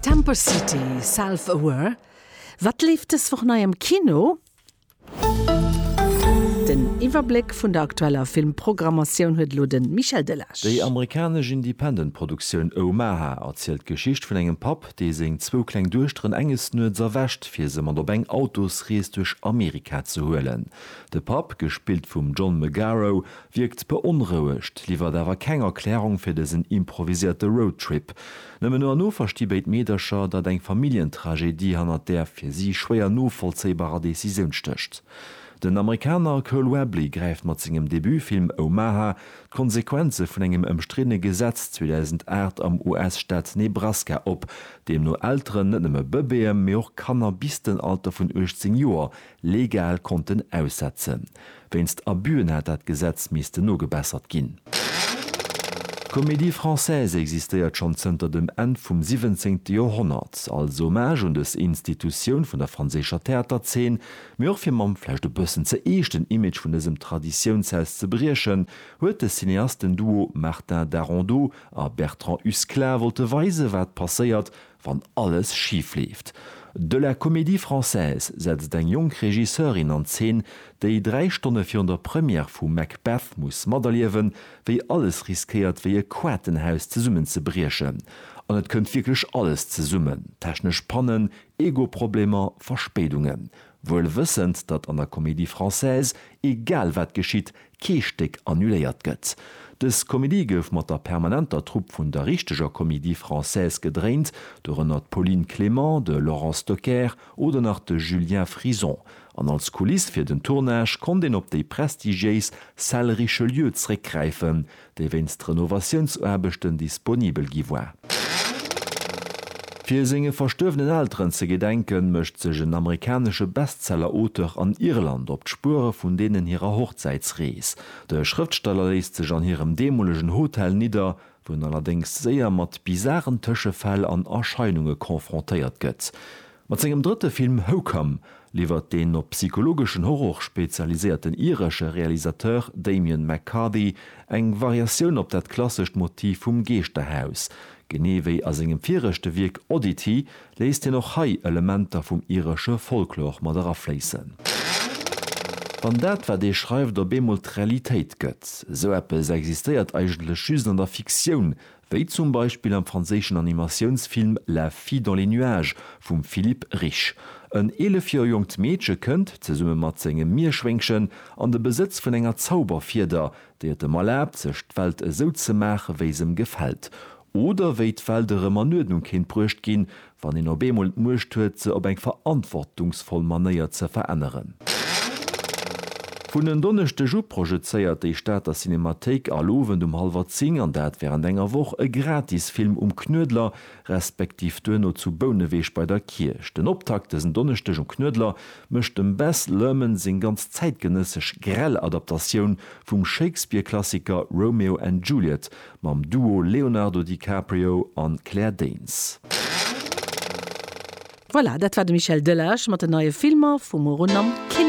Temper City, Self Aware, Wat leeft dës Woch nei am Kino? Den Iwwerbléck vun der aktueller Filmprogrammatioun huet elo de Michel Delage. Déi amerikanesch Independent-Produktioun Omaha erzielt d'Geschicht vun engem Papp, dee seng zwou kleng Duechteren enges Nuets erwächt, fir se mat op eng Autosrees duerch Amerika ze huelen. De Papp, gespillt vum John Magaro, Wierkt beonrouegt, liwwert awer keng Erklärung fir dësen improviséierte Roadtrip. Nëmmen no an no versti béid Meedercher, datt eng Familljentragedie hannert där fir si schwéier novollzéibarer Decisioun stécht. Den Amerikaner Cole Webley gräift mat sengem Debutfilm Omaha d'Konsequenze vun engem ëmstriddene Gesetz 2008 am US-Staat Nebraska op, deemno Elteren net nëmme Bëbeeë mee och Kanner bis den Alter vun 18 Joer legal konnten aussetzen. Wéinst Abüen hätt dat Gesetz missten nogebessert ginn. D'Comédie Française existéiert schonn zënter dem Enn vum siwwenzéngte Joerhonnert, als Hommage un dës Institutioun vun der franséischer Theaterzeen, mee och fir mam vläicht e bëssen ze eeschten Image vun dësem Traditiounshaus ze briechen, huet de Cineastenduo Martin Darondeau a Bertrand Husklah wollte weisen, wat passéiert, wann alles schif leeft. De La Comédie Française setzt eng jonk Regisseurin an Zeen, déi dräi Stonne virun der Première vu Macbeth muss materliewen, wéi alles riskéiert wéi e Quaartenhaus zesummen ze briechen. An et kënnt wierklech alles zesummen, technesch Pannen, Ego-Problemer, Verspéidungen. Wuel wëssend, datt an der Comédie Française egal wat geschitt, kee Stéck annuléiert gëtt. Dës Komedie gouf mat der permanenter Trupp vun der richteger Comédie Française gedréint, dorënner d'Pauline Clément, de Laurent Stocker oder nach de Julien Frison, an als Kuliss fir den Tournage konnt een op déi prestigiéis Salle Richelieu zréckgräifen, déi wéinst Renovatiounsaarbechten disponibel gi war. Fir senge verstuerwenen Elteren ze gedenken, mécht sech en amerikanesche Bestseller-Auteur an Irland op d'Spuere vun deenen hirer Hochzäitsrees. De Schrëftsteller léisst sech an hirem deemolegen Hotel nidder, wou en allerdéngs séier mat bizaren Tëschefäll an Erscheinunge confrontéiert gëtt. Mat sengem drëtte Film Hocome liwwert den op psychologeschen Horror spezialiséierten iresche Realisateur Damian McCarthy eng Variatioun op dat klassescht Motiv vum Geeschterhaus. Genee wéi a sengem viregte Wierk Oddity léisst hien och hei Elementer vum iresche Folklor mat erafléissen. Wann dat, wat ee schreift, op eemol d'Realitéit gëtt. Esou eppes existéiert eigentlech just an der Fiktioun, Wéi zum Beispill am franséischen Animatiounsfilm La fille dans les nuages vum Philippe Rich. En 11 Joer jonkt Meedche kënnt, zesumme mat sengem Mierschwéngchen, an de Besëtz vun enger Zauberfieder, déi et em erlaabt, sech d'Welt esou ze maache wéi s'em gefält. Oder wéi d'Welt erëm an Uerdnung kéint bruecht ginn, wann een op eemol d'Muecht huet se op eng verantwortungsvoll Manéier ze veränneren. Vun en Donneschdeg u projezéiert déi Stater Cinemathéik all Owend um hallwer 10, an dat wärend enger Woch, e Gratisfilm um Knuedler, respektiv duerno zu Bouneweg bei der Kierch. Den Optakt dësen Donneschdeg um Knuedler mécht dem Baz Luhrmann seng ganz zäitgenëssesch grell Adaptatioun vum Shakespeare-Klassiker Romeo and Juliet Mam Duo Leonardo DiCaprio an Claire Danes. Voilà, dat war de Michel Delage mat den neie Filmer vu muer un am Kino.